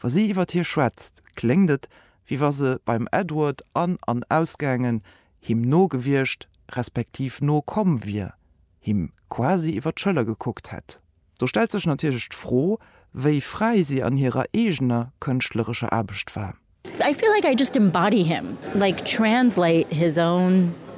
Wa si iwwer hie schwätzt, kléngt et, wéi wa se beim Edward an an ausgaangen, him no gewiescht, respektiv no komm wier, him quasi iwwer d'Schëller gekuckt hätt. Do stellt sech natierlech d'Fro, wéi fräi si an hirer eegener kënschtlerescher Aarbecht war. I feel like I just embody him, like translate his own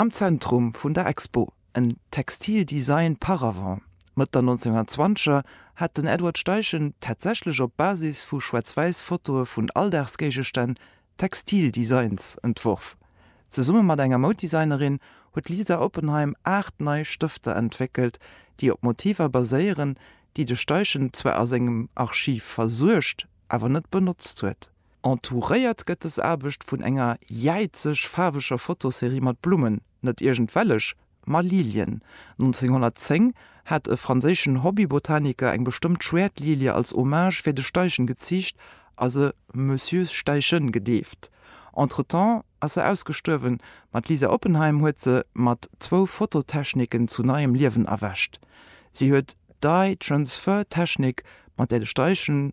Am Zentrum vun der Expo, en Textile Design par avant. Mëtt der 1920er hat den Edward Steichen tatsächlech op Basis vu schwaarz-wäiss Fotoe vun Alldagsgéigestänn Textile Designs entworf. Zesumme mat enger Mouddesignerin huet d'Lisa Oppenheim aacht nei Stëfter entwéckelt, déi op Motiver baséieren, déi de Steichen zwar a sengem Archiv versuergt, awer net benotzt huet. Entouréiert gëtt dës Aarbecht vun enger jäizeg faarweger Fotoserie mat Blummen, net iergendwellech, ma Lilien. 1910 hat e franséischen Hobbybotaniker eng bestëmmt Schwäertlilie als Hommage fir de Steichen geziicht a se Monsieur Steichen gedeeft. Entretemps ass se ausgestuerwen, ma d'Lisa Oppenheim huet se mat zwou Fototechniken zu neiem Liewen erwächt. Si huet d'Dye-Transfer-Technik, mat där de Steichen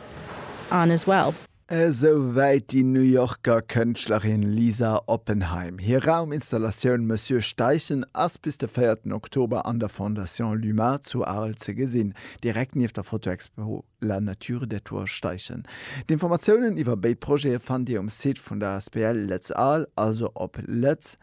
on as well. Esou wäit déi New Yorker Kënschtlerin Lisa Oppenheim. Hir Rauminstallatioun Monsieur Steichen ass bis de véierten Oktober an der Fondation Luma zu Arel ze gesinn, direkt nieft der Fotoexpo La nature des toits Steichen. D'Informatiounen iwwer béid Projete fannt Dir um Site vun der asbl Lëtz Arles, also op lëtzarl.lu.